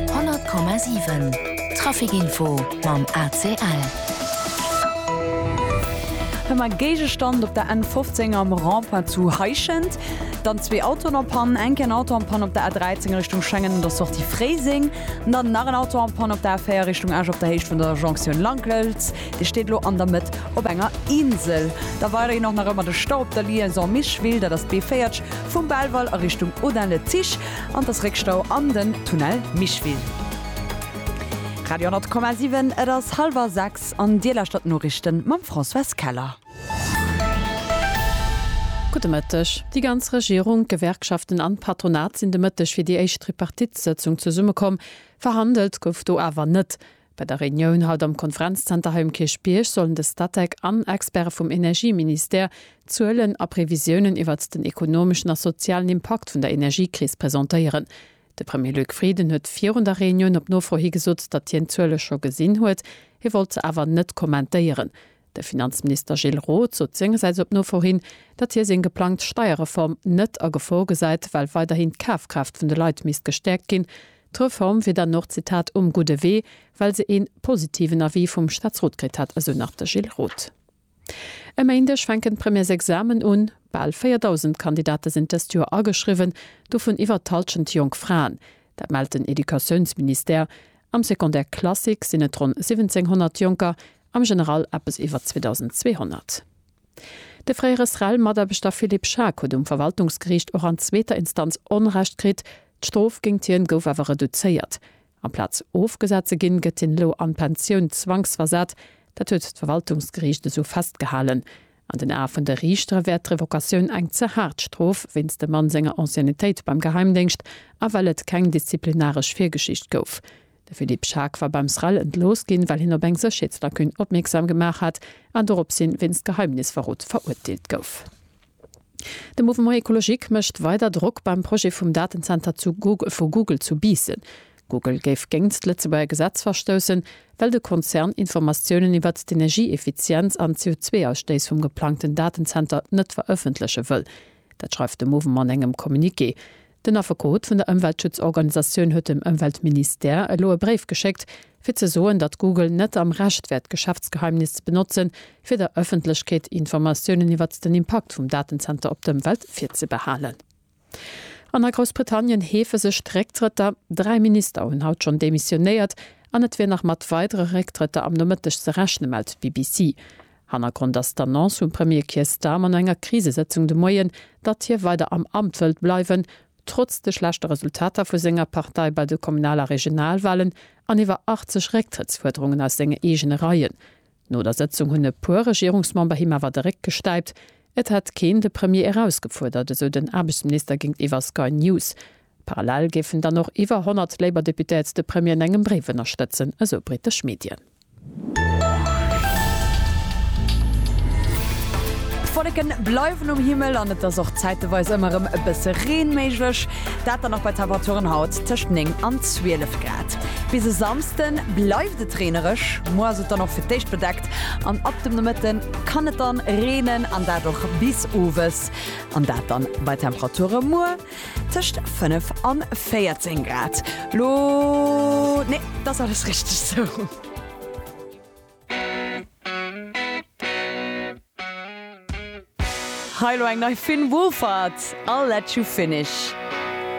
100,7 Trafic Info mam ACL. Hëmm a Géigestand op der N15 am Rond-point zu Heischent. Dann zwee Autoen en Panne, enke en Auto en Panne op der A13 Richtung Schengen un der Sortie Fréiseng. Dann nach en Auto en Panne op der A4 Richtung Esch op der Héicht vun der Jonktioun Langlëns. Dir steet elo an der Mëtt op enger Insel. Da weiderhin och nach ëmmer de Stau op der Liaison Micheville, dat ass d'B40 vum Belval a Richtung Audun-le-Tiche. An dass Réckstau an den Tunnel Micheville. Radio 10,7 Et ass hallwer 6 an Dir lauschtert d'Noriichten mam Françoise Keller. Gudde Mëtteg. Déi ganz Regierung, d'Gewerkschaften an d'Patronat sinn de Mëtteg fir déi éischt Tripartite-Sëtzung zesummekomm. Verhandelt gouf do awer net. Bei der Reunioun haut am Konferenzzenter hei um Kierchbierg sollen de Statec an Experte vum Energieministère Zuelen a Previsiounen iwwert den ekonomeschen a sozialen Impakt vun der Energiekris presentéieren. De Premier Luc Frieden huet virun der Reunioun op Nofro hi gesot, datt hien d'Zuele scho gesinn huet, hie wollt se awer net kommentéieren, De Finanzminister Gilles Roth sot sengersäits op Nofor hin, datt hie seng geplangt Steierreform net a Gefor gesäit, well weiderhin d'Kafkraaft vun de Leit misst gestäerkt ginn. D'Reform wier dann och, Zitat, um gudde Wee, well se ee positiven Avis vum Staatsrot kritt hätt, esou nach de Gilles Roth. E Méindeg fänken d'Premièresexamen un. Bal 4.000 Kandidate sinn dëst Joer ageschriwwen, dovun iwwer d'Hallschent jonk Fraen. Dat mellt den Educatiounsministère. Am Secondaire classique sinn et ronn 1.700 Jonker Am General eppes iwwer 2.200. De fréiere SREL-Mataarbechter Philippe Schaack huet um Verwaltungsgeriicht och an zweeter Instanz Onrecht kritt. D'Strof géingt hien gouf awer reduzéiert. Amplaz ofgesat ze ginn, gëtt hien elo an d'Pensioun zwangsversat. Dat huet d'Verwaltungsgeriicht esou festgehalen. An den Ae vun de Riichtere wär d'Revocatioun eng ze haart Strof wéinst dem Mann senger Anciennetéit beim Geheimdéngscht a well et keng disziplinaresch Virgeschicht gouf. De Philippe Schaack war beim SREL entlooss ginn, well hien op eng Sécherheetslacune opmierksam gemaach hat an doropshin wéinst Geheimnisverrot verurteelt gouf. De Mouvement Ecologique mécht weider Drock beim Projet vum Datenzenter zu vu Google zu Biissen. Google géif géingt d'Lëtzebuerger Gesetz verstoussen, well de Konzern Informatiounen iwwert d'Energieeffizienz an d'CO2-Ausstéiss vum geplangten Datenzenter net verëffentleche wëll. Dat schreift de Movem an engem Communiqué. Den Affekot vun der Ëmweltschutzorganisatioun huet dem Ëmweltministère elo e Bréif geschéckt, fir ze soen, datt Google net am Recht wär d'Geschäftsgeheimnis ze benotzen, fir der Ëffentlechkeet Informatiounen iwwert den Impakt vum Datenzenter op d'Ëmwelt virzebehalen. An a Groussbritannien heefe sech d'Récktrëtter. Dräi Minister hunn haut schonn demissionéiert an et wier nach mat weidere Récktrëtter am Nomëtteg ze rechnen, mellt d'BBC. Hannergrond ass d'Annonce vum Premier Keir Starmer no enger Krisesëtzung de Moien, datt hie weider am Amt wëllt bleiwen, trotz de schlechte Resultater vu senger Partei bei de Kommunal a Regionalwalen an iwwer 80 Récktrëttsfuerderungen aus senge eegene Reien. No der Sëtzung hunn e puer Regierungsmember him awer de Réck gestäipt. Et hätt keen de Premier erausgefuerdert, esou den Aarbechtsminister géintiwwer Sky News. Parallel géifen dann och iwwer 100 Labour Deputates de Premier an engem Bréif ënnerstëtzen, esou brittesch Medien. D'Wolleken bleiwen um Himmel an et ass och zäiteweis ëmmer rem e bësse Reen méiglech, dat dann och bei Temperaturen haut tëscht 9 an 12 Grad. Bis e Samsden bleift et reenereg, muer ass et dann och fir d'éischt bedeckt an ab dem Nomëtten kann et dann reenen an dat och bis owes an dat dann bei Temperature muer. Tëscht 5 an 14 Grad. Lo nee, dat ass alles richteg sou. Hei lo eng nei vun Woolfart, I'll let you finish.